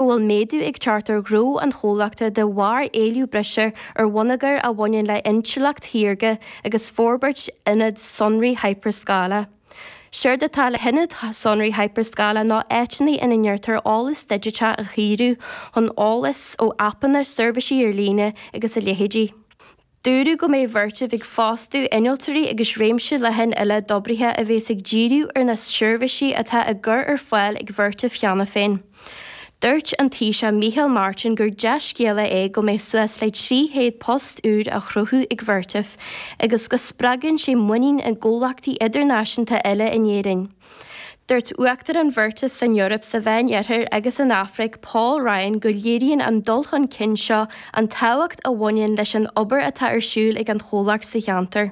go bhfuil méadú ag teacht ar ghnó an chomhlachta de bharr éileamh breise ar bhonneagar a bhaineann le hintleacht shaorga agus forbairt ionad sonraí hipear-scála. Séard atá le hionaid sonraí hipear-scála ná áiteanna ina ndéantar eolas digiteach a chíoradh chun eolas ó aipeanna, seirbhísí ar líne agus a leithéidí. Dúradh go mbeidh Vertiv ag fostú innealtóirí agus réimse leathan eile d'oibrithe a bheas ag díriú ar na seirbhísí atá á gcur ar fáil ag Vertiv cheana féin. Dúirt an Taoiseach Micheál Martin gur dea-scéala é go mbeidh suas le 300 post úr á chruthú ag Vertiv agus go spreagann sé muinín i gcomhlachtaí idirnáisiúnta eile in Éirinn. Dúirt Uachtarán Vertiv san Eoraip, sa Mheánoirthear agus san Afraic, Paul Ryan go léiríonn an dul chun cinn seo an tábhacht a bhaineann leis an obair atá ar siúl ag an chomhlacht sa cheantar.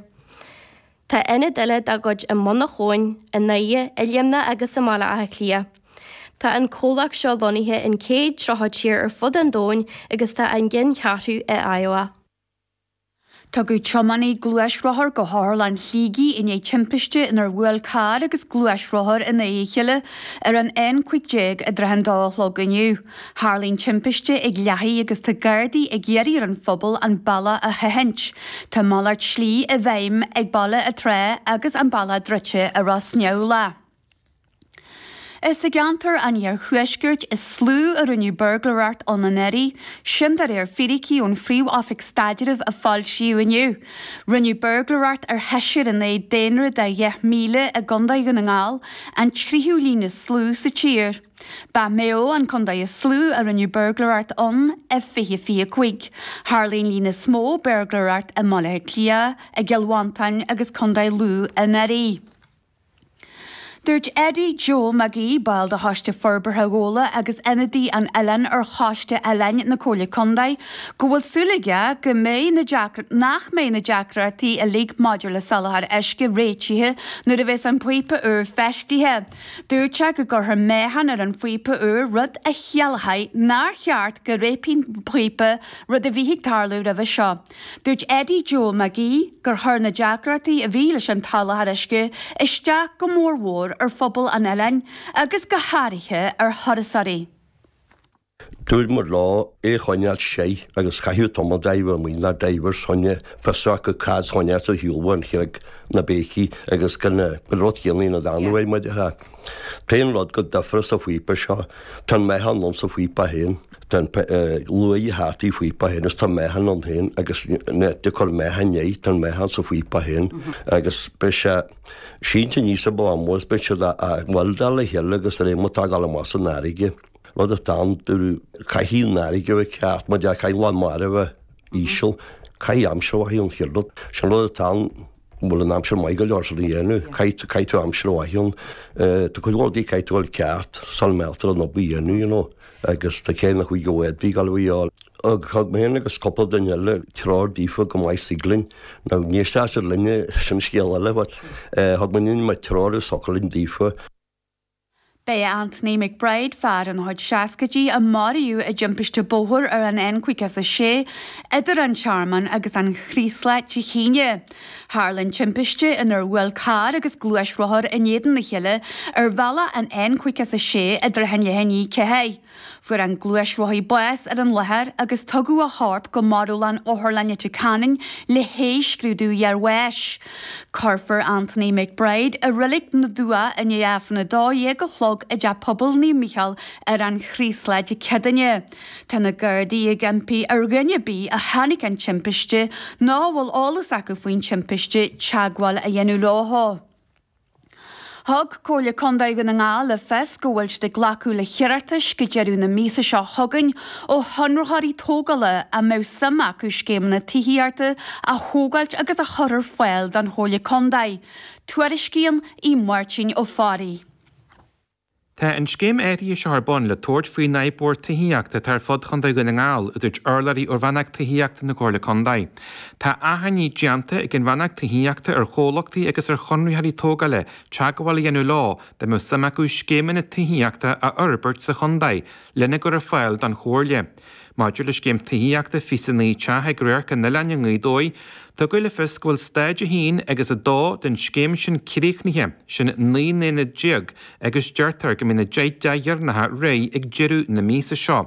Tá ionaid eile dá gcuid i mBun na hAbhann, i nDoire, i Luimneach agus i mBaile Átha Cliath. Tá an comhlacht seo lonnaithe in 130 tír ar fud an domhain agus tá a gceanncheathrú i Iowa. Tugadh tiománaí gluaisrothar go hOtharlann Shligigh i ndiaidh timpiste inar bhuail carr agus gluaisrothar in aghaidh a chéile ar an N15 i dtrátha an dó a chlog inniu. Tharla an timpiste ag Lathaigh agus tá Gardaí ag iarraidh ar an phobal an bealach a sheachaint. Tá malairt slí i bhfeidhm ag Baile an tSratha agus an bealach druidte i Ros Neamhlach. Is i gceantar an iarthuaiscirt is lú a rinneadh buirgléireacht ann anuraidh, sin de réir fíricí ón Phríomh-Oifig Staidrimh a foilsíodh inniu. Rinneadh buirgléireacht ar sheisear in aghaidh daonra de dheich míle i gcontae Dhún na nGall, an tríú líon is lú sa tír. Ba Maigh Eo an contae is lú a rinneadh buirgléireacht ann, i 2025. Tharla an líon is mó buirgléireacht i mBaile Átha Cliath, i gCill Mhantáin agus contae Lú anuraidh. Dúirt Eddie Joe Mac Aoidh, ball de Choiste Forbartha Ghabhla agus ionadaí an oileáin ar Choiste Oileáin na Comhairle Contae, go bhfuil súil aige go mbeidh na nach mbeidh na deacrachtaí uilig maidir le soláthar uisce réitithe nuair a bheas an píopa úr feistithe. Dúirt sé go gcuirfear meáchan ar an phíopa úr rud a chiallóidh nár cheart go réabfadh an píopa, rud a bhíodh ag tarlú roimhe seo. Dúirt Eddie Joe Mac Aoidh gur chuir na deacrachtaí a bhí leis an tsoláthar uisce isteach go mór mhór ar phobal an oileáin agus go háirithe ar thurasóirí. Dúramar leo é a choinneáil seoigh agus chaithfeadh tamall dá bhfuil muinn ár dtaobhar soin fios acu cad soin as a shiúlfadh an chreag, na béicí agus gan an rud céanna ina dteannadh ar muid. Ach an rud go difear sa phíopa seo, tá an meáchan ins an phíopa féin. Tá an luaidh a thátaí phíopa féin agus tá meáchan ann féin agus de cur meáchan i ndeigh tá an meáchan sa phíopa féin agus beidh sé sínte níos a bá mór is beidh siad á bhfuil dá le chéile agus ar aon matág á le más na farraige. Rud atá ann do caithfidh an fharraige a bheith ceart mar a déarfá caithfidh lán mara a bheith íseal caithfidh aimsir a bheith an-cheart. Sin rud atá ann. An bhfuil an aimsir maith go leor sin a dhéanamh? Caithfidh, caithfidh tú aimsir mhaith ann. Eh, tá cuid mhór rudaí caithfidh tú a fháil ceart, sula mealltar an obair a dhéanamh, you know, agus tá céimeanna chuige go bhféadfaí gála a fháil. Ag, thug mé féin agus cúpla duine eile treoir daofa chomh maith is a thig linn. Now, an éistfidh siad linne, sin scéal eile, but, eh, thug muidinne an méid treoir is a thiocfadh linn daofa. B'é Anthony McBride, fear ina chuid seascaidí, a maraíodh i dtimpiste bóthair ar an N56 idir an Tearmann agus an Chraoslach Dé hAoine. Tharla an timpiste inar bhuail carr agus gluaisrothar in éadan a chéile ar bhealach an N56 i dtrátha leath i ndiaidh a ceathair. Fuair an gluaisrothaí bás ar an láthair agus tugadh a chorp go marbhlann Otharlann Leitir Ceanainn le haghaidh scrúdú iarbháis. Cuirfear Anthony McBride i Reilig na dTuath i ndiaidh Aifreann 12 a chlog i dTeach Pobail Naomh Micheál ar an Chraoslach Dé Céadaoine. Tá na Gardaí ag impí ar dhuine ar bith a chonaic an timpiste nó a bhfuil eolas acu faoin timpiste teagmháil a dhéanamh leo. Thug Comhairle Contae Dhún na nGall le fios go bhfuil siad ag glacadh le hiarratais go deireadh na míosa seo chugainn ó chonraitheoirí tógála a mbeadh suim acu scéimeanna tithíochta a thógáilt agus a chur ar fáil don Chomhairle Contae. Tuairiscíonn Aodh Máirtín Ó Fearraigh. Tá an scéim áirithe seo ar bun le tabhairt faoin fhadhb mhór tithíochta atá ar fud Chontae Dhún na nGall, a dúirt urlabhraí ó Rannóg Tithíochta na Comhairle Contae. Tá achainí déanta ag an Rannóg Tithíochta ar chomhlachtaí agus ar chonraitheoirí tógála teagmháil a dhéanamh leo dá mbeadh suim acu scéimeanna tithíochta a fhorbairt sa chontae lena gcur ar fáil don Chomhairle. Maidir le scéim tithíochta 29 teach ag Radharc an Oileáin i nGaoth Dobhair, tugadh le fios go bhfuil Stáid 1 agus 2 den scéim sin críochnaithe, sin 19 n-aonad agus deirtear go mbeidh na deich dtithe dheireanacha réidh ag deireadh na míosa seo.